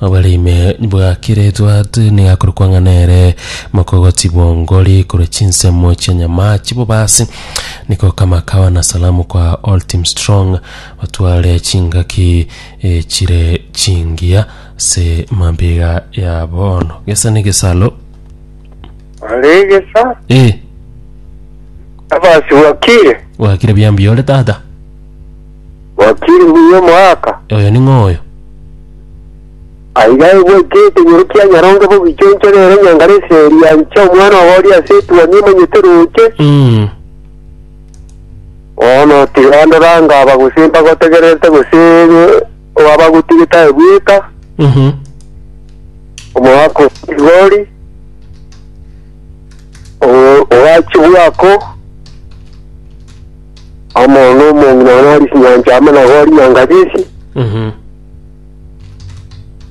Obere ime bwakire etwate nigo akorokwa ng'a nere mokogoti bw'ongori korwa chinsemo chia nyama chibobasi niko kama kawa na salamu kwa all team strong batware chingaki eh, chire chingiya se mambiga ya bono gesa ne gesalo aregesa eh abasi bwakire wakire biambi ore tata Wakiri mbuya omoaka. Oyo ning'o oyo? Aiga egwete ekenyoro kia nyaronge bogichonchore ere nyangare eseri anche omwana obo oria ase etuoni emanyete roche. Mm. Bono tiga ndore anga aba gose mpagotegererete gose eh, oabagotige taebweka Mhm. omoaka otigori owachi bwako Amo nomong'ina one arie chinyancha amo na gori na ngache echi, Mhm.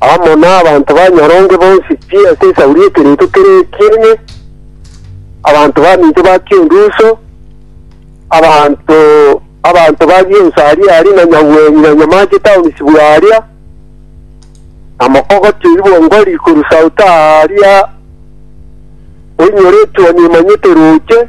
amo nabanto ba nyaronge bonsi chie ase esauri y'ekereito kere ekiene, abanto baminto ba Kionduso, abanto abanto ba Gionso aria aria na Nyagweny na Nyamache town isibwa aria, na mokogoti oyio bwongori korwa south aria oinyoretwe nimanyete roche,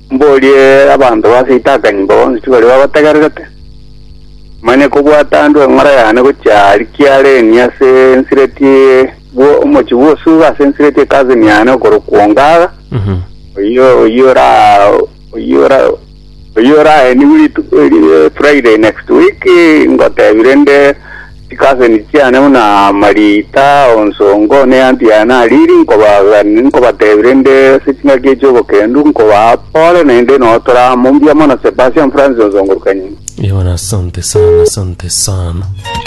Mborie abanto ba seito akanyimba bonsi baria bagotegererete, manye kobwatandwe eng'ora yane gochia aria kiareni ase ensireti bwo omochie bw'osuga ase ensireti ekaseni yane okorokwa Ongaga, oyio oyio ora oyio ora oyio oraenigwe ritu- ri- Friday next week, ngotebire nde Chikaseni chiane buna mariita onsongo, ne eantu yaye nariri, nkobaagani, nkobatebi rende ase chingaki echi obokendu, nkobaa pole, naende notoraa, mbuya mono Sebastian Francis onsongorokanie. Yona asante sana asante sana.